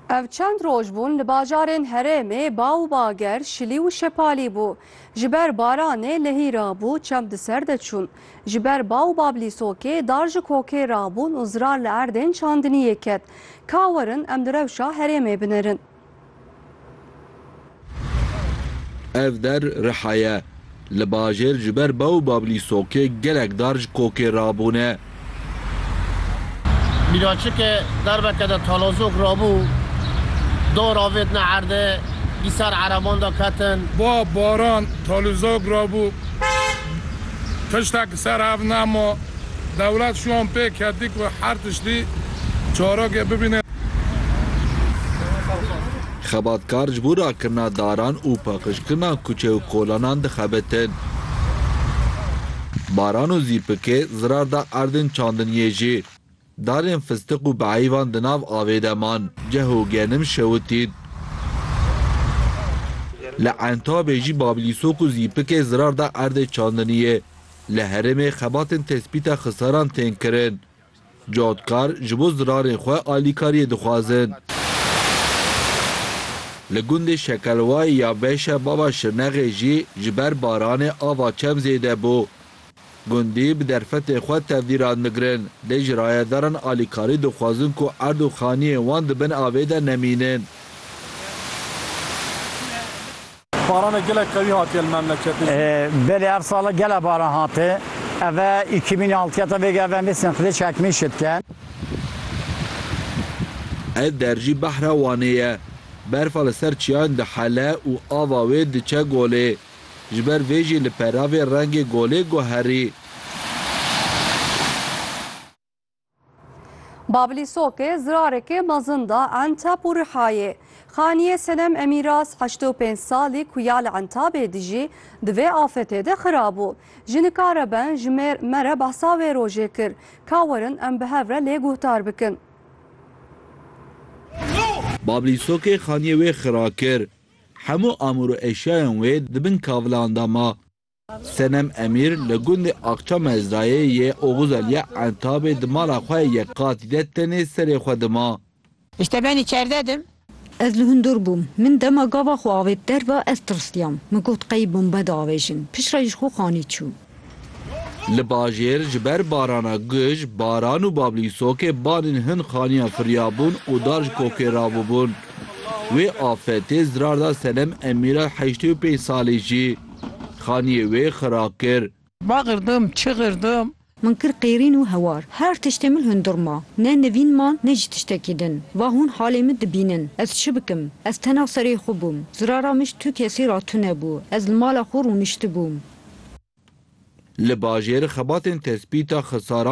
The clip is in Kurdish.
Ev çend roj bûn li bajarên herêmê ba û bager şilî û şepalî bû. Ji ber baranê lehî rabû çem di ser de çûn. Ji ber ba û bablîsokê dar ji kokê rabûn û zirar li erdên çandiniyê ket. Ka werin em di rewşa herêmê binerin. Ev der riha ye. Li bajêr ji ber ba û babilî sokê gelek dar ji kokê rabûne. Mîraçike derbeke de talozok rabû, dar avêtine erdê, di ser ereban de ketin. Ba baran talozok rabû, tiştek ser ev nema. Dewlet şûn pê ketî ku her tiştî çarokê bibîne. Xebatkar ji bo rakirina daran û paqijkirina kuçe û kolanan dixebitin. Baran û zîpikê zirar da erdên çandiniyê jî. Darên fistiq û beeyvan di nav avê de man. Ceh û genim şewitîn. Li Entabê jî bablîsok û zîpikê zirar da erdê çandiniyê. Li herêmê xebatên tespîta xisaran tên kirin. Cotgar ji bo zirarên xwe alîkariyê dixwazin. Li gundê Şekelwayê ya Beşe bava Şirnexê jî ji ber baranê ava çem zêde bû. Gundî bi derfetên xwe tevlî radmigrin, lê ji rayedaran alîkarî dixwazin ku erd û xaniyên wan di bin avê de nemînin. Baranê gelek qewî hatiye li memleketê jî. Belê ev sala gelek baran hate. Eve îkî mînê altiyeta vê ge eve mêsên xidê çekmîn şitke. Ev der jî behra Wanê ye. Berfa li ser çiyan dihele û ava wê diçe golê. Ji ber vê jî li peravê rengê golê guherî. Babilî Soke zirareke mezin da Enteb û Rihayê. Xaniyê Senem Emîraz heştê û pênc salî ku ya li Entabê dijî di vê afetê de xirabû. Ji nikare ben ji me re behsa wê rojê kir. Ka werin em bi hev re lê guhdar bikin. Babilî Soke xaniyê wê xira kir. Hemû amûr û eşyayan wê di bin kavilan de ma. Senem Emîr li gundê Akça Mezdayê yê Oxuzel ya Entabê di mala xwe ya yek qatî de tenê serê xwe dima. Ji temenê çardeh dim. Ez li hundir bûm. Min dema gava xwe avê bi derve ez tirsiyam. Min got qey bombe diavêjin. Piştre ji xwe xanî çû. Li bajêr ji ber barana guj, baran û bablîsokê banên hin xaniyan firiyabûn û dar ji kokê rabûbûn. Wê afetê zirar da Senem Emîra heştê û pênc salî jî. Xaniyê wê xira kir. Va girdim, çi girdim. Min kir qêrîn û hewar. Her tiştê min hundir ma. Ne nivîn man, ne jî tiştekî din. Va hûn halê min dibînin. Ez çi bikim? Ez tena serê xwe bûm. Zirara mij tu kesî ra tune bû. Ez li mala xwe rûniştibûm. Li bajêr xebatên tespîta xisaran.